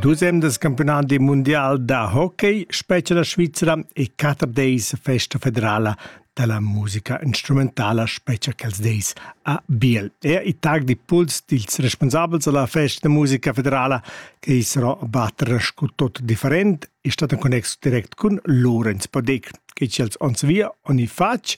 Dus emdas campionat dil mundial da hockey spetga la Svizra e quater deis festa federala dalla musica instrumentala spetga quels deis a Biel. Er i tag di puls dils responsabels alla festa da musica federala che isro batter sco tot different è stato connex direct cun Lorenz Podek che ci als ons via ogni fatg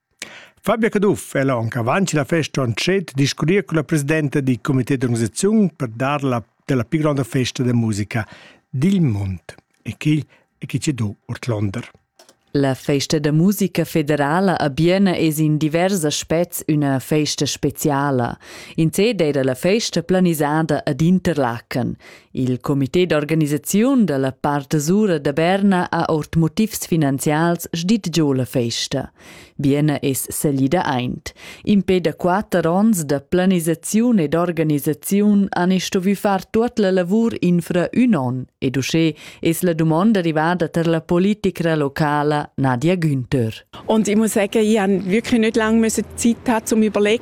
Fabia Caduff è aunc avanti la festa Ontschiet discurrir con la presidenta dil comité d'organisaziun per dar la dalla pli gronda festa da musica dil mund e quei e chi c'è do ordlonder. La festa da musica federala a Biena es in divers aspects üna festa speciala. In se d'eira la festa planisada ad Interlaken. Il comité d'organisaziun dalla part sura da Berna ha ord motivs finanzials sdit giu la festa. Biena es salida aint. Impè da quatter ons da planisaziun ed organisaziun han stuvü far tuot la lavur infra ün on ed uschè es la dumonda rivada tar la politicra locala Nadia Günther. Und ich muss sagen, ich habe wirklich nicht lange Zeit gehabt, um überlegen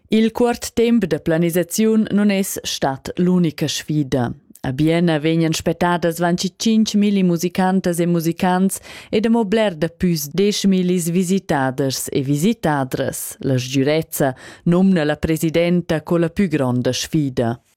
Il cuort temp de planisaziun non es stat l'unica sfida. A Bienna vegnan spettadas 25.000 musicantas e musicants ed amo bler da püs 10.000 visitaders e visitadras. La sgürezza nomna la presidenta co la pü gronda sfida.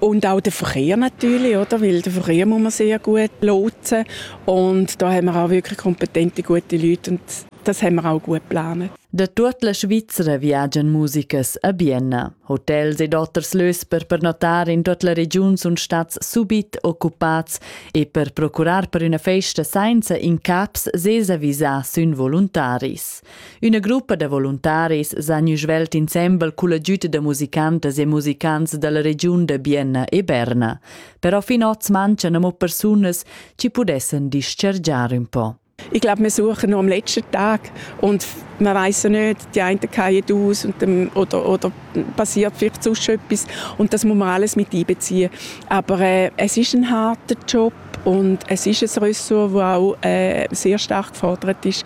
Und auch der Verkehr natürlich, oder? Weil den Verkehr muss man sehr gut lotsen und da haben wir auch wirklich kompetente, gute Leute und das haben wir auch gut geplant. De tutte le Svizzere viaggian musicas a Bienna. Hotels ed oters lös per pernotar in tutte le regiuns und stats subit occupats e per procurar per una festa senza incaps sesa visà sün voluntaris. Üna gruppa da voluntaris s'han gnü svelt insembel culla giüta da musicantas e musicants da la regiun da Bienna e Berna. Però fin hoz mancan amo persunas chi pudessan dischargiar ün po. Ich glaube, wir suchen noch am letzten Tag und man weiß nicht, die einen fallen aus und dann, oder, oder passiert vielleicht sonst etwas und das muss man alles mit einbeziehen. Aber äh, es ist ein harter Job Und es ist ein Ressort, das auch äh, sehr stark gefordert ist.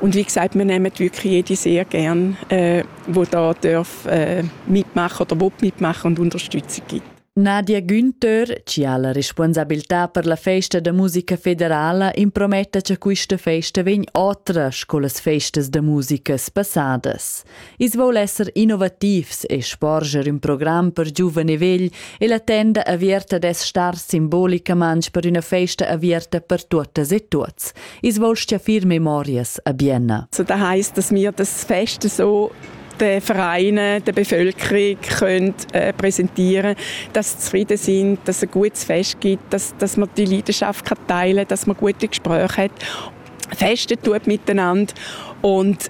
Und wie gesagt, wir nehmen wirklich jede sehr gern, äh, wo da darf, äh, mitmachen oder will mitmachen und Unterstützung gibt. Nadia Günther, ci ha la responsabilità per la festa da musica federala imprometta che questa festa vegn otra sco las festas da musica passadas. I's voul esser innovativs e sporger ün program per giuven e vegl e la tenda avierta dess star simbolicamaing per üna festa avierta per tuottas e tuots. I's voul stiafir memorias a Bienna. So das heisst, dass wir das Fest so den Vereinen, der Bevölkerung können, äh, präsentieren dass sie zufrieden sind, dass es ein gutes Fest gibt, dass, dass man die Leidenschaft kann teilen kann, dass man gute Gespräche hat. Festen tut miteinander und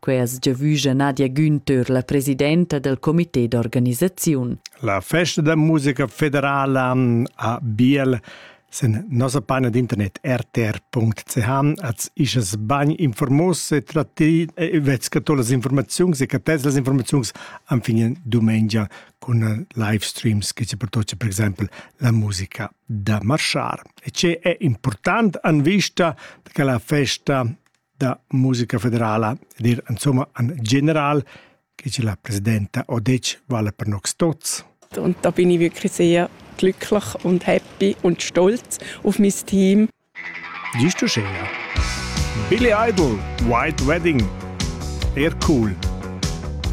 Quei as giavüscha Nadia Günther, la presidenta del comité d'organisaziun. La festa da musica federala a Biel sin nossa pagina d'internet rtr.ch az is es bagn informos e tratti e vezca todas las informaziuns e catez las informaziuns am fine dumengia con live streams che ci pertocca per esempio la musica da marciar e ce è important an vista che la festa da musica federala dir insomma an general che ce la presidenta ho detg vale per nox tots. Und da bin ich wirklich sehr glücklich und happy und stolz auf mein Team. Gist du schön. Billy Idol, White Wedding. Eher cool.